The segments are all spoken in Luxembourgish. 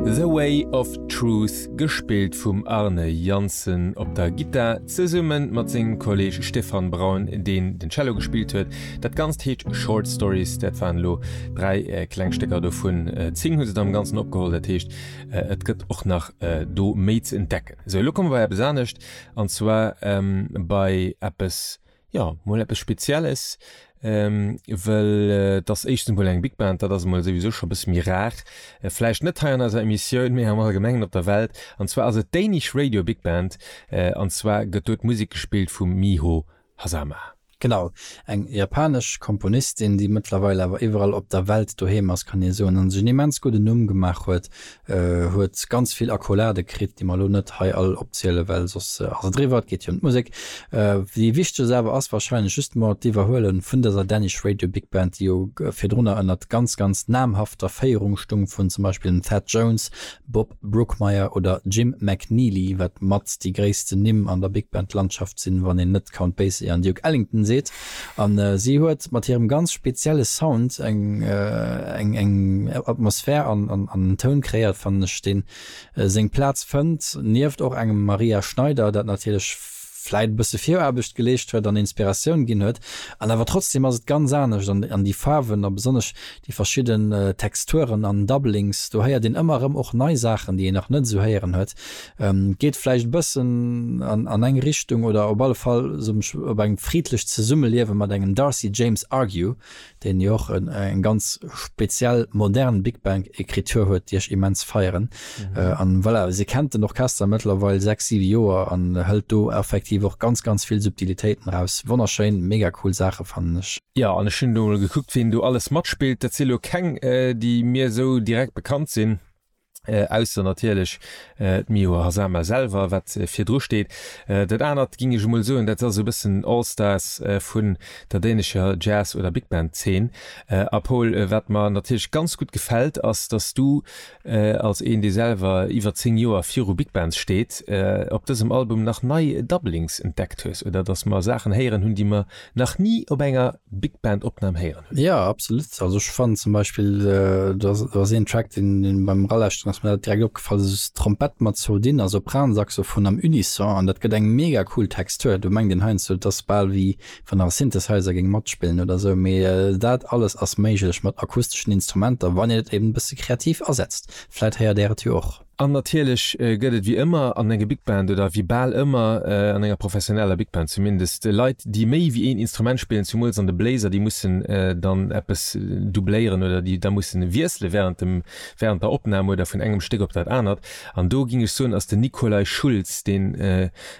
The Way of Truth, gespillt vum Arne Janssen op der Gittar, zesumme mat sengem Kolleg Stefan Braun, deen den Cello gespillt huet. Dat Ganzt heescht Short Stories, dat waren elo dräi kleng Stécker, dovun zéng hu se dann am Ganzen opgeholl. Dat heescht, et gëtt och nach do méi ze entdecken. Esou, elo komme bei eppes anescht, an zwar bei eppes, Ja, mol eppes Spezielles, ähm, wëll et ass éischtens mol eng Big Band, dat ass emol souwisou scho e bësse méi rar, vläicht net hei an eiser Emissioun, mee am Allgemengen op der Welt. An zwar ass et d'Danish Radio Big Band, an zwar gëtt do d'Musek gespillt vum Miho Hazama. Genau, eng japanesch Komponistin, déi mëttlerweil awer iwwerall op der Welt doheem ass, kann ee soen, a sech en immens gudden Numm gemaach huet huet ganz vill Accolade kritt, déi mer elo net hei all opzielen, well soss ass et eriwwer. Et geet hei ëm d'Musek. Déi wichtegst awer ass wahrscheinlech just mol d'Iwwerhuele vun dëser Danish Radio Big Band, déi jo virdrunner ënnert ganz, ganz namhafter Féierung stung, vun zum Beispill dem Thad Jones, Bob Brookmeyer oder Jim McNeely, wat mat déi gréissten Nimm an der Big Band Landschaft sinn, wann een net Count Basie an Duke Ellington seet. An si huet mat hirem ganz spezielle Sound eng eng Atmosphär an an en Toun kreéiert fannen ech deen seng Plaz fënnt nieft och engem Maria Schneider dat natierlech vläit e bësse Viraarbecht geleescht huet an Inspiratioun ginn huet an awer trotzdem ass et ganz anescht an déi Faarwen a besonnesch Déi verschidden Texturen an Doublings, do héiert een ëmmer erëm och nei Saachen, déi een nach net esou héieren huet. Geet vläicht e bëssen an eng Richtung oder op alle Fall op eng friddlecht Zesummeliewe mat engem Darcy James Argue, deen jo och eng ganz speziell modern Big Bang Ekritur huet, déi ech immens feieren. An voilà, se kennt den Orchester mëttlerweil sechs, siwe Joer an hëlt do effektiv och ganz, ganz vill Subtilitéiten eraus. Wonnerschéin, mega cool Saache fannen ech. Jo, an ech hunn elo mol gekuckt, wien do alles matspillt. Dat si elo keng, déi mir esou direkt bekannt sinn, ausser natierlech d'Miho Hazama selwer, wat virdru steet. Dat anert, géing ech emol soen, dat ass esou e bëssen All-Stars vun der dänescher Jazz oder Big Band Zeen. A Pol, wat mer natierlech ganz gutt gefält, ass, datt s du, Als een dee selwer iwwer 10 Joer viru Big Bands steet, op dësem Album nach nei Doublings entdeckt hues oder dass mer Saachen héieren hunn déi mer nach ni op enger Big Band Opnam héieren hunn? Jo absolut, also ech fannen zum Beispill do ass een Track deen beim eralauschteren ass mir dat direkt opgefall, dat ass Trompett mat zwou Dinner, Sopran, Saxophon am Unisson an dat gëtt eng mega cool Textur. Do mengt een heiansdo et ass bal wéi wann nach e Synthesizer géing matspillen oder esou, mee dat alles ass méiglech mat akusteschen Instrumenter, wann een et eben e bësse kreativ asetzt. Vläit héiert Där et jo och. An natierlech gëtt et, wéi ëmmer an enger Big Band, oder wéi bal ëmmer an enger professioneller Big Band zumindest, Leit, déi méi wéi een Instrument spillen, zumools an de Bléiser, déi mussen dann eppes doubléieren oder déi da mussen wiessele während dem, während der Opnam oder vun engem Stéck op dat anert. An do géing ech soen, ass den Nikolaj Schulz deen,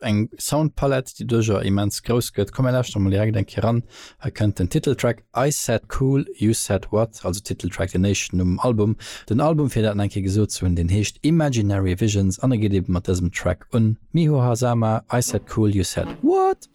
Eng Soundpalette, déi duerch a immens grouss gëtt. Komm mir lauschteren mol direkt eng Kéier ran. Hei kënnt den Titeltrack I Said Cool, You Said What, also Titeltrack, den éischten um Album. Den Album, fir dat nach eng Kéier gesot ze hunn, deen heescht Imaginary Visions an e geet eebe mat dësem Track un, Miho Hazama, I Said Cool, You Said What.